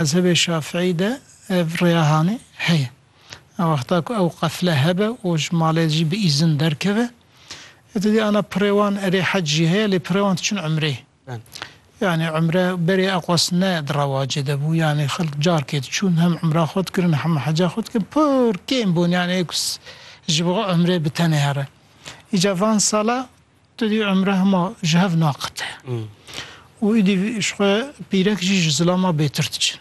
Mezhebê Şafiî de ev rêahanê heye. Wexta ku ew qefle hebe û ji malê jî bi îzin derkeve. Ê tu dî ana pirê wan erê hec jî heye lê pirê wan diçin umrê. Yanî umre berê eqwas ne di rewacê de bû. Yanî xelk carkê diçûn hem umra xwe dikirin hem heca xwe dikirin. Pir kêm bûn yanî ê ku ji bo umrê bi tenê here. Îca van sala Tu dî umre hema ji hev naqete û îdî ji xwe pîrek jî ji zilama bêtir diçin.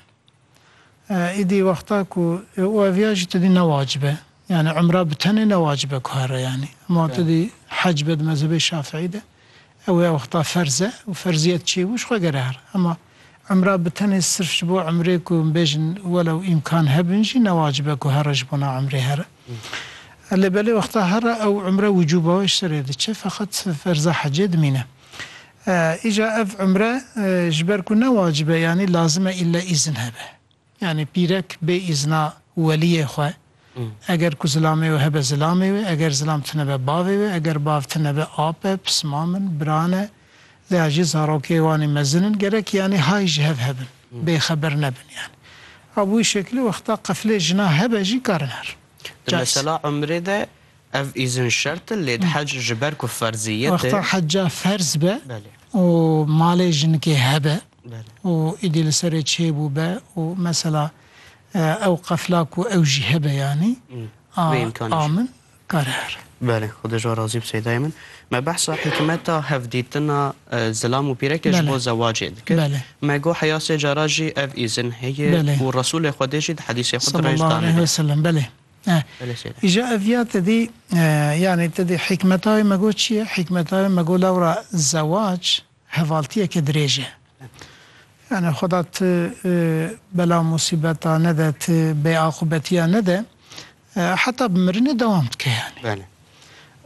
Îdî wexta ku û ev ya jî tu dî ne wacib e. Yanî umra bi tenê ne wacib e ku here yanî. Hema tu dî hec be di mezhebê şafîî de ew ya wexta ferz e û ferziyet çêbû ji xwe gere here. Hema. Emra bi tenê sirf ji bo emrê ku em bêjin welew îmkan hebin jî ne wacib e ku here ji bona emrê here. Lê belê wexta here ew emre wicûba wê ji serê diçe feqet ferza hecê dimîne. Îca ev emre ji ber ku ne wacib e yanî lazim e îlle îzin hebe. Yanî pîrek bê îzna weliyê xwe, eger ku zilamê wê hebe zilamê wê, eger zilam tunebe bavê wê, eger bav tunebe ap e, pismam in, biran e, lêya jî zarokê wanî mezin in, gerek yanî hay ji hev hebin, bêxeber nebin yanî. A bi wî şekilî wexta qefilê jina hebe jî karin her. Di mesela umrê de Ev îzin şert e lê hec ji ber ku ferziyet e. Wexta heca ferz be û malê jinikê hebe û êdî li serê çêbû be û mesela ew qefla ku ew jî hebe yanî a min kare here. Belê xwedê ji we razî be seyda yê min. Me behsa hikmeta hevdîtina zilam û pîrekê ji bo zewacê dikir. Me got heya sê cara jî ev îzin heye û Resûlê xwedê jî di hedîsê xwe di rêj danîne. Îja ev ya te dî yanî te dî hîkmeta wê me got çi ye? Hîkmeta wê me got lewra zewac hevaltiyeke dirêj e. Yanî xuda tu bela musîbeta nede, tu bêaqûbetiya nede heta bi mirinê dewam dike yanî.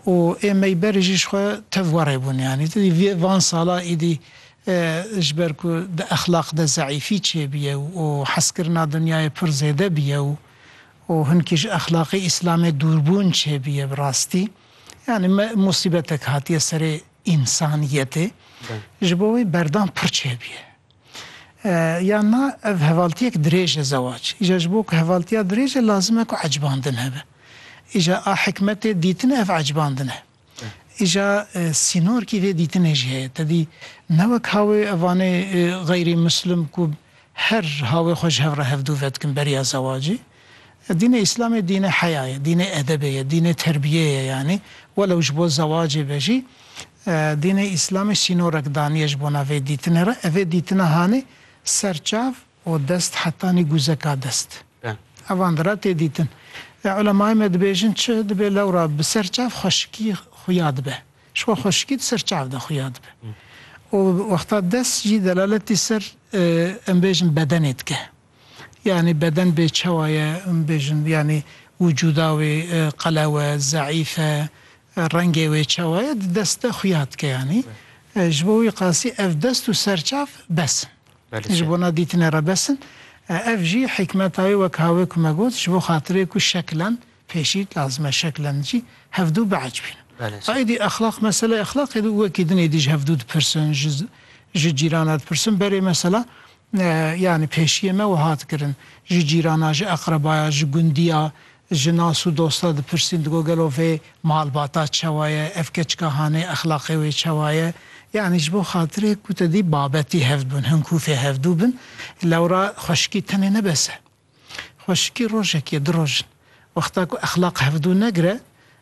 Û ê meyberî jî ji xwe tev warê bûn yanî. Ti dî van sala îdî ji ber ku di exlaq de zeîfî çêbûye û hezkirina dinyayê pir zêde bûye û û hinkî ji exlaqê îslamê dûrbûn çêbûye bi rastî yanî musîbetek hatiye serê însaniyetê ji bo wê berdan pir çêbûye yan na ev hevaltiyek dirêj e zewac îja ji bo ku hevaltiya dirêj e lazim e ku ecbandin hebe îja a hikmetê dîtine ev ecbandin e. Îja sînorkî vê dîtinê jî heye. Tedî ne wek hawê evanê xeyrî muslim ku her hawê xwe ji hev re hevdû vedikin beriya zewacî. Dînê îslamê dînê heya ye, dînê edebê ye, dînê terbiyê ye yanî welew ji bo zewacê be jî dînê îslamê sînorek daniye ji bona vê dîtinê re. Evê dîtina hanê ser çav û dest hetanî guzeka dest. Evan di re tê dîtin. Lê ulemayê me dibêjin çi dibê lewra bi ser çav xweşikî xuya dibe. Ji xwe xweşikî di ser çav de xuya dibe. Û wexta dest jî delaletî ser em bêjin bedenê dike. Yanî beden bê çawa ye em bêjin yanî wicûda wê qelew e, zeîf e, rengê wê çawa ye di dest de xuya dike yanî. Ji bo wî qasî ev dest û ser çav bes in. ji bo na dîtinê re bes in. Ev jî hîkmeta wê wek ha wê ku me got, ji bo xatirê ku şeklan, pêşî lazim e şeklan jî hevdû biac bînin. A êdî exlaq, meseleyê exlaqê di û wekî din êdî ji hevdû dipirsin, ji ji cîrana dipirsin, berê mesela yanî pêşiyê me wiha dikirin, ji cîrana, ji eqrebaya, ji gundiya, Ji nas û dosta dipirsîn digo gelo vê malbata çewa ye, ev keçika hanê exlaqê wê çewa ye. Yanî ji bo xatirê ku te dî babetî hev dibin, hin kûfê hevdû bin. Lewra xweşikî tenê ne bes e. Xweşikî rojekî ye, du roj in. Wexta ku exlaq hevdû negire,